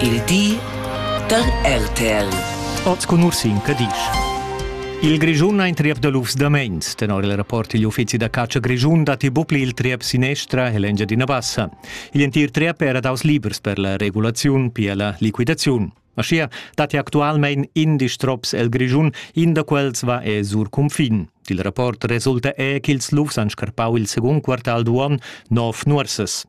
Il di da RTL. Oz cun Ursin Cadisch. Il Grischun ha in triep da lufs da mains. Tenor il rapport digl uffizi da catscha grischun datti bucli il triep sinestra e l'Engiadina Bassa. Igl entir triep era daus libers per la regulaziun, pia la liquidaziun. Aschia datti actualmein indesch trops el Grischun, in da quels va e sur cunfin. Il rapport resulta è ch'ils lufs han scarpau il secund quartal d'uon nov nuorsas.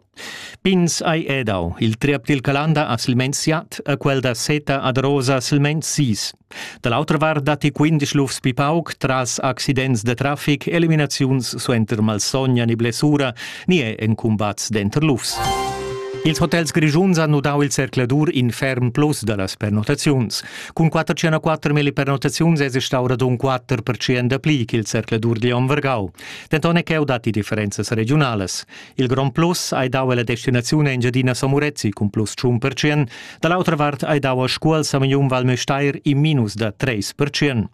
Pins ei edau. Il triep dil Calanda ha silmeins siat e quel da Seta ad Rosa silmeins sis. Da l'autra vart datti quindisch lufs pli pauc tras accidents da traffic, eliminaziuns suenter malsogna ni blessura ni è en cumbats denter lufs. Ils hotels grischuns han nudau il zercladur in ferm plus dallas pernottaziuns. Cun 404 pernottaziuns esa stau radun 4% dapli ch'il zercladur digl Onn Vargau. Denton è cheu datti differenzas regionalas. Il Grand Plus ei dau ella destinaziun Engiadina Samurezzi cun plus tschun percent, dall'autra vart ei dau a Scuol Samignun Val Müstair in minus da treis percent.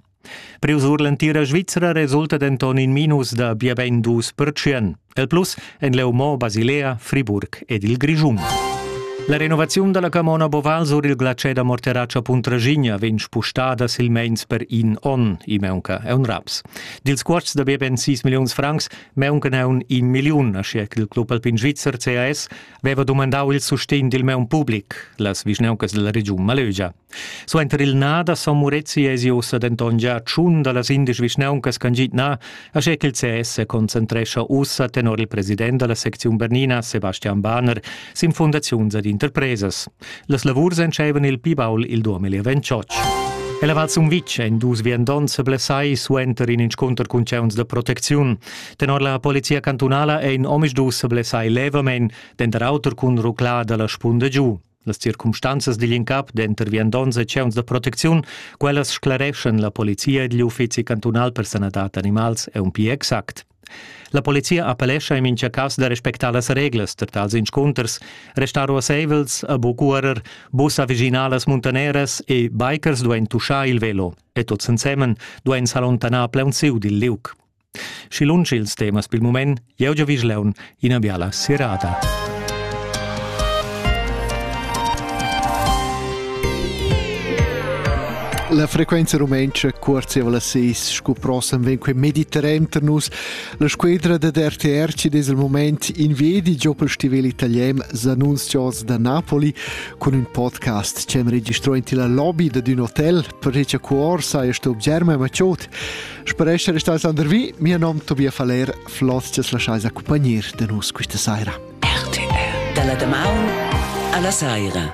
Priu sur l'entira Svizra resulta denton in minus da bia bein dus percent. El plus ein leu mo Basilea, Friburg ed il Grischun. La renovaziun dalla camona Boval sur il glacè da Morterace Puntragigna vegn spustada silmeins per in onn, i meunca è un raps. Dils cuosts da bia ben 6 milliuns francs Meuncan aun in milliun, aschia ch'il club alpin svizzer CAS veva dumandau il sustegn dil meun public, las vischnauncas dalla regiun Malögia. Suenter il na da Son Murezi esi ussa denton gia tschun dallas indesch vischnauncas ch'han git na, aschia ch'il CS se concentrescha ussa tenor il president dalla secziun Bernina, Sebastian Bahner, sin fundaziuns ed interpresas. Las lavurs entscheivan il pli baul il 2028. Ella Val Sumvitg ein dus viandonts blessai suenter in inscunter cun tgeuns da protecziun. Tenor la polizia cantunala ein omisdus blessai levamein, denter auter cun ruclar dalla spunda giu. Las circumstanzas digl incap denter viandonts e tgeuns da protecziun, quellas sclareschan la polizia digl uffizi cantunal per sanadad animals e un pli exact. La polizia appellescha in mincha cas da respectar las reglas per tals inscunters, restar ruasseivels a bu cuorer, bussa viginalas muntaneras e bikers duein tuschar il velo e tuts ensemen duein s'allontanar plaunsiu dil liug. Schi lunsch ils temas pil mument, jeu giavisch leun ina biala serada. La frequenza rumentscha cuorzieva la seis scu prossem ven quei mediterran tar nus. La squedra da RTR ci des il moment in vedi giò pel stivel italian Zanunzios da Napoli cun ün podcast che am registrò in la lobby da d'ün hotel per recha cuor saja sto Germa Maciot. Spero essere stato Sander Vi, mio nom Tobias Faller, Floss, ti lasciais accumpagnir da nus questa saira. RTL. Dalla damaun alla saira.